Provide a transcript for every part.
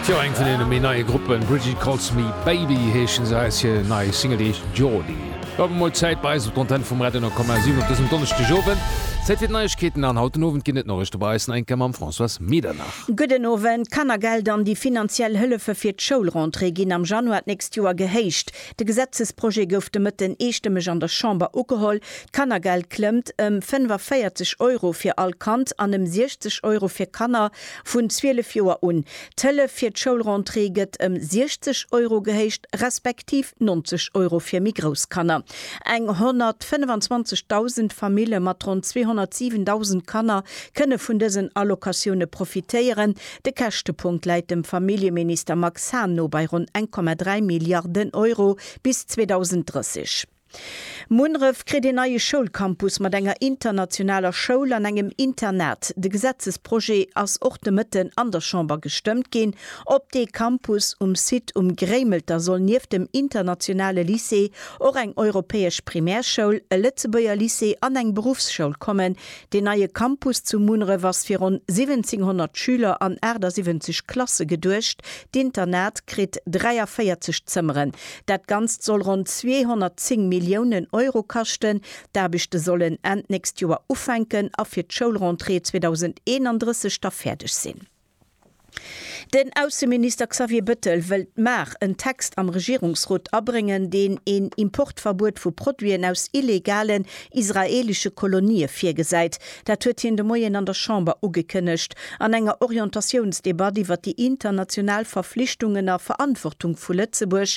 Jo, eng vun deene méi neie Gruppen, Bridget Calls Me Baby heeschen se, eis hir nei Single déi heescht Jordi. Awer mol Zäit bei eis op d'Antenn vum Radio 9,7 op dësem Donneschdegowend. Zäit fir d'Neiegkeeten an haut den Owend ginn et Noriichte bei eis, Nainka mam Françoise Medernach. Gudden Owend. D'Kannergeld an déi finanziell Hëllefe fir d'Schoulrentrée ginn am Januar d'nächst Joer gehéicht. De Gesetzesprojet gouf de Mëtten eestëmmeg an der Chamber ugeholl. D'Kannergeld klëmmt ëm 45 Euro fir all Kand an ëm 60 Euro fir Kanner vun 12 Joer un. D'Hëllef fir d'Schoulrentrée gëtt ëm 60 Euro gehéicht, respektiv 90 Euro fir méi grouss Kanner. Eng 125.000 Famille mat ronn 207.000 Kanner kënne vun dësen Allocatioune profitéieren, De Käschtepunkt läit dem Familljeminister Max Hahn no bei ronn 1,3 Milliarden Euro bis 2030. Munneref kritt een neie Schoulcampus mat enger internationaler Schoul an engem Internat. De Gesetzesprojet ass och de Mëtten an der Chamber gestëmmt ginn. Op dee Campus um Site um Gréimelter soll nieft dem internationale Lycée och eng europäesch Primärschoul, e Lëtzebuerger Lycée an eng Beruffsschoul kommen, Deen neie Campus zu Munneref ass fir ronn 1700 Schüler an 78 Klasse geduecht. D'Internat kritt 43 Zëmmeren. Dat Ganzt soll ronn 210 Milliounen Euro kaschten. D'Aarbechte sollen Enn d'nächst Joer ufänken a fir d'Schoulrentrée 2031 da fäerdeg sinn. Den Ausseminister Xavier Bëttel wëllt mar en Text am Regierungsrot abréngen, deen een Importverbuet vu Produiten aus illegalen israeelesche Kolonië virgesäit. Dat huet hien de Moien an der Chamber ugekënnegt, an enger Orientatiounsdebatt iwwer déi international Verflichtungen a Verantwortung vu Lëtzebuerg,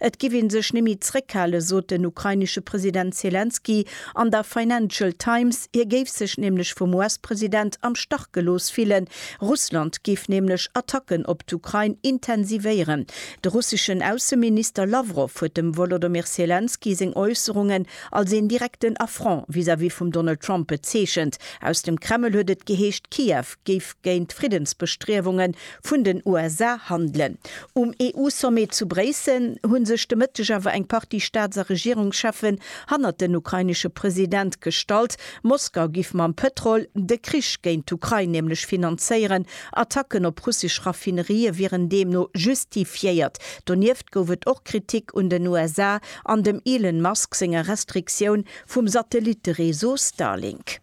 Et giff ee sech némmi zréckhalen, sot den ukrainesche President Selenskyj an der Financial Times. Hie géif sech nämlech vum US-President am Stach gelooss fillen. Russland géif nämlech Attacken op d'Ukrain intensivéieren. De russeschen Ausseminister Lawrow huet dem Wolodomyr Selenskyj seng Äusserungen als een direkten Affront vis-à-vis vum Donald Trump bezeechent. Aus dem Kreml huet et geheescht, Kiew géif géint d'Friddensbestriewunge vun den USA handelen. Um EU-Sommet zu Bréissel hu sech de Mëtteg awer eng Partie Staats a Regierungscheffen hannert den ukrainesche President gestallt. Moskau giff mam Pëtrol de Krich géint d'Ukrain nämlech finanzéieren. Attacken op russesch Raffinerië wieren deemno justifiéiert. Donieft gouf et och Kritik un den USA an dem Elon Musk senger Restriktioun vum Satellittereseau Starlink.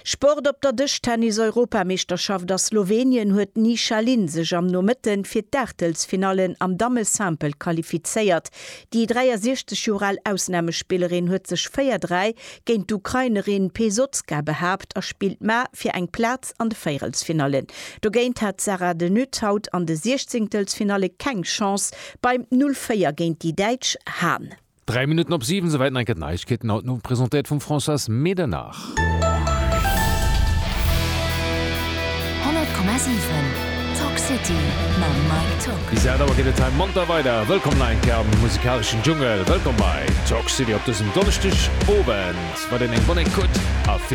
Sport Op der Dëschtennis-Europameeschterschaft a Slowenien huet d'Ni Shaline sech am Nomëtte fir d'Aachtelsfinallen am Damme-Simple qualifizéiert. Déi 63 Joer al Ausnamespillerin huet sech 4, 3 géint d'Ukrainerin Pesotska behaapt a spillt ma fir eng Plaz an de Véierelsfinallen. Dogéint hat d'Sara de Nutte haut an de Siechzéngtelsfinalle keng Chance beim 0, 4 géint déi Däitsch Hahn. Dräi Minutten op siwen, souwäit nach eng Kéier d'Neiegkeeten, haut den Owend presentéiert vum Françoise Medernach. Honnert Komma siwen, Talk City mam Mike Tock. Bis aacht Auer geet et hei monter weider. Wëllkomm nach eng Kéier am musikaleschen Dschungel. Wëllkomm bei Talk City op dësem Donneschdeg Owend. Mat een eng bonne écoute a vill.